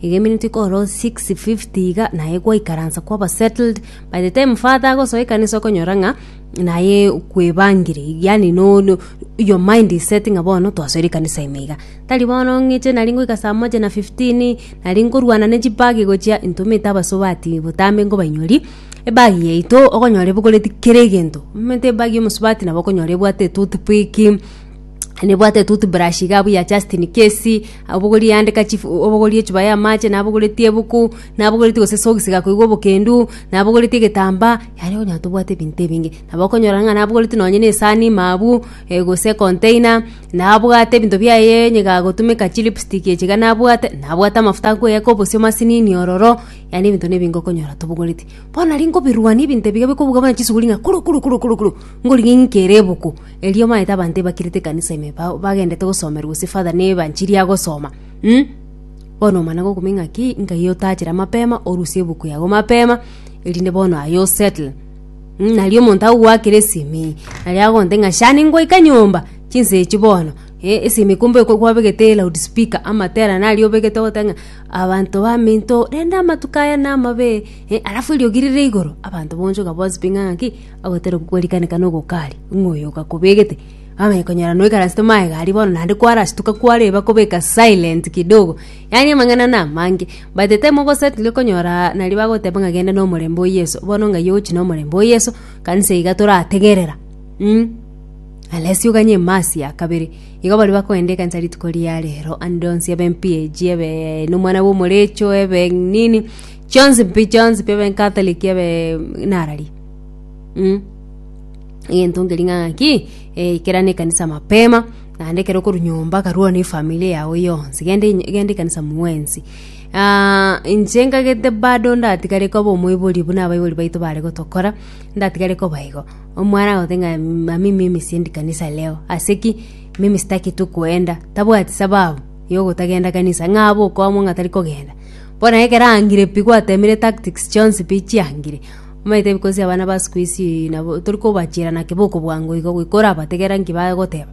Iga eminto ikorwa 650 iga naye gwaikaransa kwaba settled by the time father agosoa ekanisa okonyora ng'a naye kwebangire yani no, no your mind is setting ng'a bono twasoire ekanisa ime iga tari bono ng'eche nari ngoika saa moja na 15 nari nkorwana ne chibag gochia ntomete abasubati botambe nkobainyoria ebag yaito okonyora ebogoreti kera egento omonto ebag ya omosubati nabo okonyora ebwate etoothpick nebwate toothbrush iga buya Justin Case, abogorie yandeka chief obogorie echupa y'amache, nabogoretie ebuku, nabogoretie gose esogisi gakoigwa obokendu, nabogoretie egetambaa, yaani onye tobwate ebinto ebinge. Nabo okonyora ng'a nabogoretie nonye na esaani ime abwo, eh gose econtainer, nabwate ebinto biaye onye gagotumeka chilipstick echi iga nabwate, nabwate amafuta akoyaka obosio masinini ororo, yaani ebinto na ebinge okonyora tobogoreti. Bono nari nkobirwania ebinto ebiya bikobuga buna chisuguri ng'a kuru kuru kuru kuru kuru, ngorigia ng'ikere ebuku. Erio omaete abanto ebakirete ekanisa ime ba- bagendete gosomerwa gose father ne evanchiri agosoma mm. Bono omana gokuma ing'aki nkai otachera mapema orusie ebuku yago mapema erinde bono aye osettle mm. Nari omonto agogoakera esimi nari agogonte ng'a shani ngoika nyomba chinsa echi bono eh esimi kumbe ekwe kwabegete loud speaker amatera naria obegete ogote ng'a abanto baminto rende amatuko aya namabe eh alafu eriogi rire igoro abanto bogochoka bospinga ng'a ki. Agotera okogwarikaneka na ogokari, ng'a oyo ogakobegete amanye konyora noikaransete maega aria bono naende kwarasituka kwareba kobeka silent kidogo. Yaani amang'ana na amange, by the time ogoset iga konyora naria bagoteba ng'a genda na omorembe o Yeso, bono ng'ai ogochi na omorembe o Yeso, kanisa iga torategerera mm. Unless oganye emasi ya kabere, igo baria bakogenda ekanisa rituko ria rero ande onsi ebe mp-ag ebe nomwana bwa omorecho ebe nini, chionsi pi chionsi pi ebe catholic ebe narari. Mm. egento nkeri ng'a ng'aki eh, ikerana ekanisa mapema naende ekero okorwa nyomba karwana efamili yago yonsi genda enye- genda ekanisa mwensi Ah, inche nkagete bado ndatigare koba omoibori buna abaibori baito bare gotokora ndatigare koba igo omwana agote ng'a mami mimi siendi kanisa leo ase ki mimi sitaki tu kuenda tabwati sababu yogotagenda kanisa ng'a abe okwama ng'a tari kogenda bono ekero angire pi gwatemire tactics chionsi pi chiangire. Omanyete ebikosi abana ba sikuisi nabo tori kobachera na keboko bwango igo goika orabategera nki bagoteba.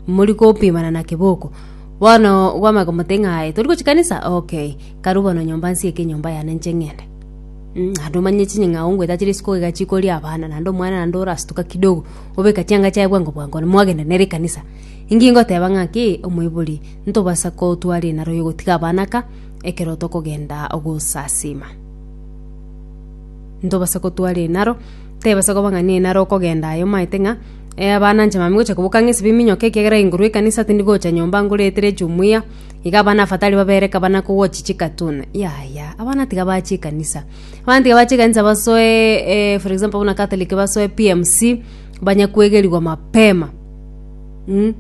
Mori kopimana na keboko. Bono kwamanya komote ng'a aye tori gochia kanisa ok karu bono nyomba nsieke enyomba yane nche ng'ende. Mh naende omanye chinying'ao ngoeta chire isiko iga chikoria abana naende omwana naende orastuka kidogo obeka chianga chiaye bwango bwango mwagenda nere ekanisa. Inki ngoteba ng'a ki omoibori ntobasa kotwara enaro yogotiga abana aka ekero tokogenda ogosasiima. ntobasa kotwara enaro tebasa koba ng'a nenaro okogenda aye omaete ng'a eh, abana nche mami gocha koboka ng'a esibimi nyoke ekiagera inguru ekanisa tindi gocha nyomba ngoretere jumuia iga abana afatari babere kabana kowochi chikatuna yaya abana tiga bache ekanisa abana tiga bache ekanisa basoe eh, for example buna catholic basoe PMC banya kwegerigwa mapema mm.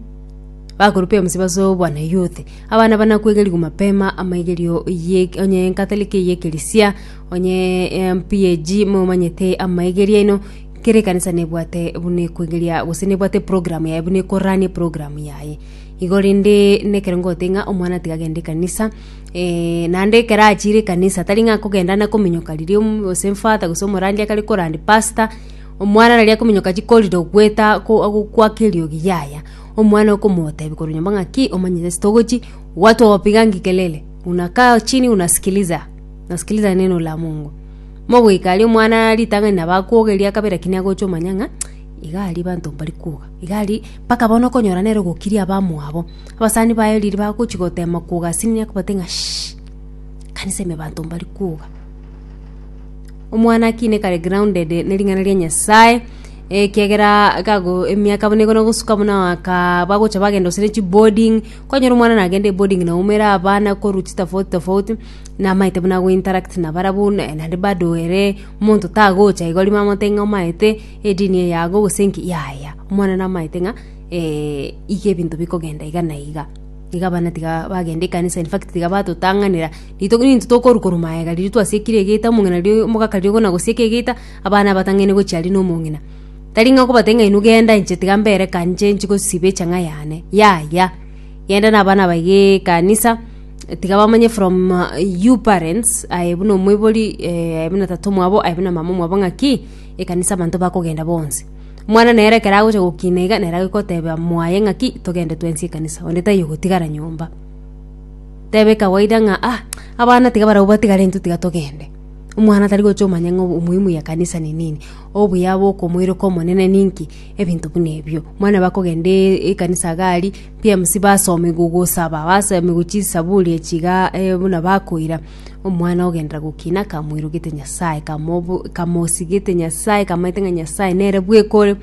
Bakorupia omosie base obwanayouth. Abana bana kwegerigwa mapema amaigerio ye onye enkathoriki ye ekerisia onye em PAG momanyete amaigerio aino kera ekanisa nebwate buna ekwegeria gose nebwate program yaye buna ekoranie program yaye. Igo rende na ekero ngote ng'a omwana tiga agende ekanisa naende ekero achire ekanisa tari ng'a akogenda na kominyoka riria om gose emfata gose omorandia akare korandi pastor omwana riria akominyoka chikorire goeta ko agokwa keriogi yaya. Omwana okomotebia korwa nyomba ng'a, Ki omanyete ase togochi? Watu wawapigangi kelele, unakaa chini unasikiliza. Nasikiliza neno la Mungu. Mogoika aria omwana ritang'ani nabo akwoga eria kabere lakini agocha omanya ng'a iga aria abanto mbari kwoga. Iga aria mpaka bono okonyora nere ogokiria abamwabo. Abasani baye riria bagochi gotema kwoga asini akobate ng'a shhh! Kanisa ime abanto mbari kwoga. Omwana ki nekare grounded ne ring'ana ria Nyasae, ekiagera gago emiaka buna igana gosuka buna aka bagocha bagenda gose ne chiboarding, kwanyora omwana nagende eboarding naumera abana korwa chitofauti tofauti, namaete buna go interact nabarabwo naye naende bado ere monto tagocha igo rimo amote ng'a omaete edini eye yago gose nki yaya, omwana namaete ng'a iga ebinto bikogenda iga na iga. Iga abana tiga bagenda ekanisa in fact tiga batotang'anera rito ninto tokorwa korwa maega riria twasiekire egeta omong'ina riria omogaka riria ogona gosieka egeta abana abatang'aine gochia aria na omong'ina tari ng'a okobatebia ng'a inwe genda inche tiga mbere ekancha inche gosiba echang'a yane yaya genda na abana aba igaa ekanisa tiga bamanye from you parents aye buna omoibori aye buna tata omwabo aye buna mama omwabo ng'aki ekanisa abanto bakogenda bonsi. Omwana nere ekero agocha gokina iga, nere agokoteba mwaye ng'aki togende twensi ekanisa, onde taiyo ogotigara nyomba. Tebe ekawaida ng'a ah, abana tiga barabwo batigare intwe tiga togende. Omwana tari gocha omanye ng'a omoimu ya ekanisa ne nini, obuya bwa okomoireka Omonene ninki, ebinto buna ebio. Omwana eba akogenda ekanisa iga aria, PMC basomigwa gosaba, basomigwa chisaburi echi igaa buna bakoira. Omwana ogenderera gokina, kamoirogete Nyasae, kamobo- kamosigete Nyasae, kamaete ng'a Nyasae nere bweka ore,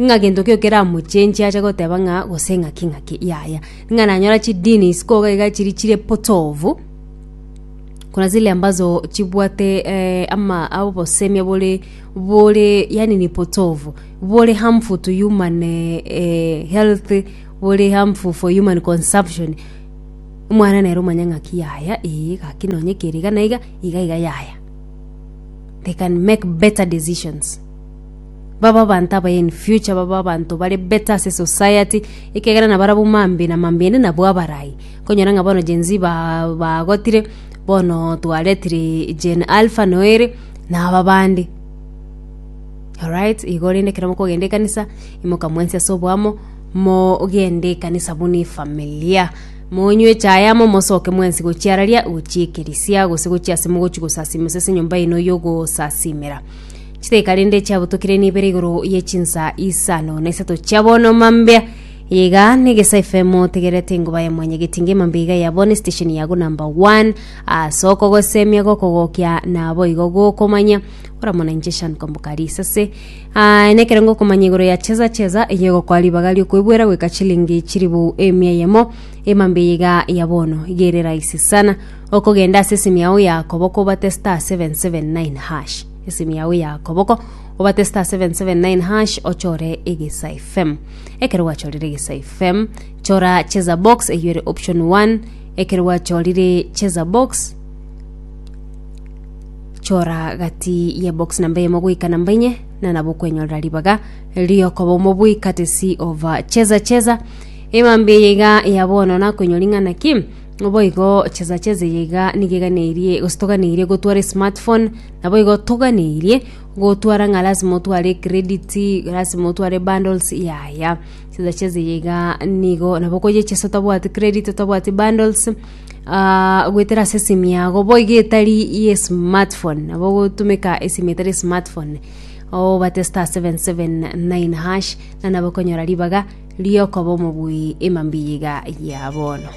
ng'a gento kio keramochenchie ache goteba ng'a gose ng'aki ng'aki yaya. Ng'a nanyora chidini isiko iga iga chiri chire potovu, kuna zile ambazo chibwate ama obosemi bore bore yaani ni potovu, bore harmful to human health, bore harmful for human consumption. Omwana nere omanya ng'aki yaya, ee, gaki nonye kere iga na iga, iga iga yaya. They can make better decisions. Babe abanto abaye in future, babe abanto bare better ase society, ekegera nabarabwo mambe na mambe ende nabwo abarai. Konyora ng'a bono Gen Z ba- bagotire, bono twaretire Gen Alpha noere, na aba bande. Alright, igo rende ekero mokogenda ekanisa, imoka mwensi ase oboamo, Mogende ekanisa buna efamilia, monywe echae amo, mosoke mwensi gochia araria, gochia ekerisia, gose gochia ase mogochi gosasima ase enyomba yaino yogosasimera. Chidakika rende chiabotokire nibere igoro ye chinsa isano na isato chia bono mambia iga negesa FM otegerete engoba ya mwanya getinge emambia iga ya bono station yago number one ase okogosemia gokogokia nabo igo gokomanya oramona inche Shan Kombokari isase Aa, nekero ngokomanya igoro ya chesa chesa eye egokoa ribaga riokoibuera goika chilingi chiribou emia eyemo emambia eye iga ya bono iga ere rahisi sana okogenda ase esimi yao ya koboko obate star 779 hash esimi yao ya koboko obate star 779 hash ochore egesa fm ekero gwachorire egesa fm chora chesa box eyo ere option 1 ekero gwachorire chesa box chora gati ye box namba eyemo goika namba inye na nabo okwenyorera ribaga riokoba omobui katesi ova cheza cheza emambi eye iga ya bono nakwenyori ng'ana ki obo igo cheza cheza eye iga nigo eganeirie gose toganeirie gotwara esmartphone nabo igo toganeirie gotwara ng'a lasima otware credit lasima otware bundles yaya cheza cheza eye iga nigo nabo okoyechesia otabwati credit otabwati bundles ah, goetera ase esimu yago boigo etari ye smartphone nabo gotumeka esimu etari smartphone obate star 779 hash na nabo konyora ribaga riokoba omobui emambiyiga ya bono